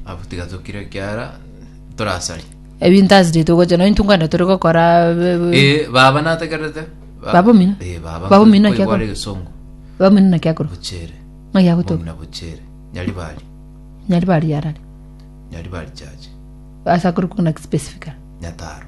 Abwo tiga tokire ekiara torasari. ebinto ase rituko gocha nonye intwe nkwenda tore gokora be- be- Eh, baba nategerete. Ba- Baba omino? Eh, baba. Baba omino Koigwa kiakora? are gesongo. baba omino naki akorwa Bochere. ng'a yagotoka Omina bochere. Nyari bari. nyari bari yarari Nyari bari chache. ase akorokwa ng'a specifica Nyataro.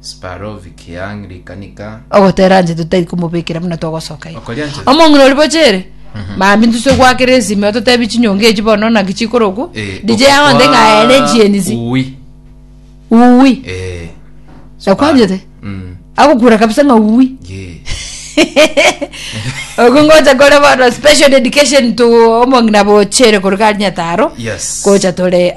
Sparovi kiang rikanika. Ogotera nche totari komobekera buna togosoka igo. Okoria nche. Omong'ina ori boche ere. Mami ntuse gwakera esime ototebi chinyonga echi bono naki chikorokwa. Eh, Dije okokwaa- yagonte ng'a ere chienisi. Ui. Ui. Eh. Nakwanyete? Mm. Agokura kabisa ng'a ui. Ye. Ogo ngocha kore bono special dedication to omong'ina boche ere korwa kanyetaro. Yes. Gocha tore